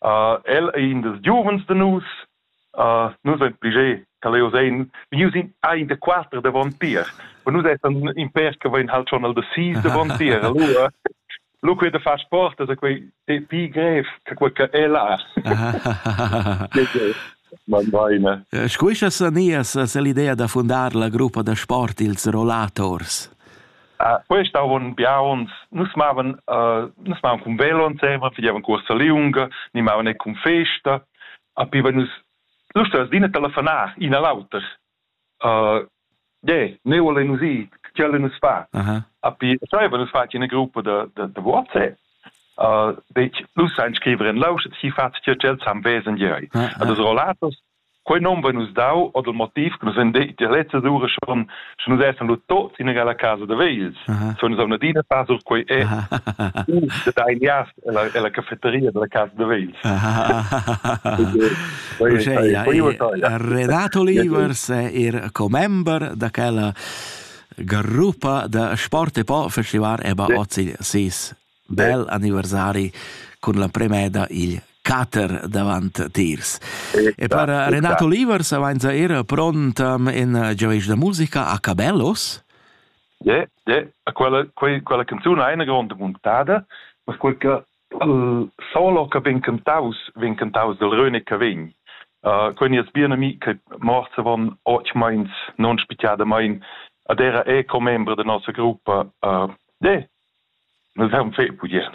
Uh, el ei in dils giuvens da nus. Uh, nus ein pli ge che leu sein. Nus ein ein da quater davon tier. Und nus essan in per che vein halt schon al da sis davon tier. Allora, lu quei da far sport, also quei pi grev che quei che ella. Man vaina. Eh, scuischa sanias l'idea da fundar la gruppa da sport ils Rollators? Quest avon biauns, nus mavan nus mavan cun velo ensemen, fagevan cuorsa liunga, ni mavan e cun festa, a pi vein nus lur las din e telefonar in a l'auter. yeah, neu volein nus ir, tgei volein nus far? A pi savevan nus far ina gruppa da da WhatsApp. dec nus ein scriver en lausch, si fatg tgei ch'els han vesen jeu. A dus rollatos quei non va nus dau o dal motiv che nus vein detg tier lezza sura schon sche nus essan lu tots in egala casa da vegls so nus avna adina far sur quei e da dai nias ella ella cafeteria della casa da vegls Renato Livers è er commember da quella gruppa da sport e po festival e ba ozzi sis Bel anniversari cun l'emprema eda il cater davant tiers. E per Renato Livers avainza era pront in giaveisch da musica a Cabellos? Yeah, yeah. Quella, quei, quella canzun ha ina gronda muntada, ma quel che il solo che vegn cantaus vegn cantaus del Röne che vegn. Uh, quindi es bien ami che morse von och meins non spichiada mein ad era è commembre de nostra gruppa uh, de Nus haun fait pudier.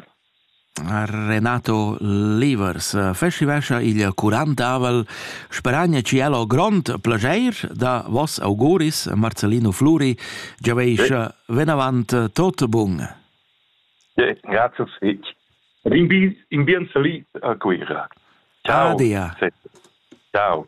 Renato Livers festivescha il curantavel. Speragna ci el ho grond plageir da vos auguris, Marcellino Fluri, giaveischa venavant tot bun. Ja, grazie fich. Rinbis in bien salit a Cuira. Ciao. Adia. Ciao.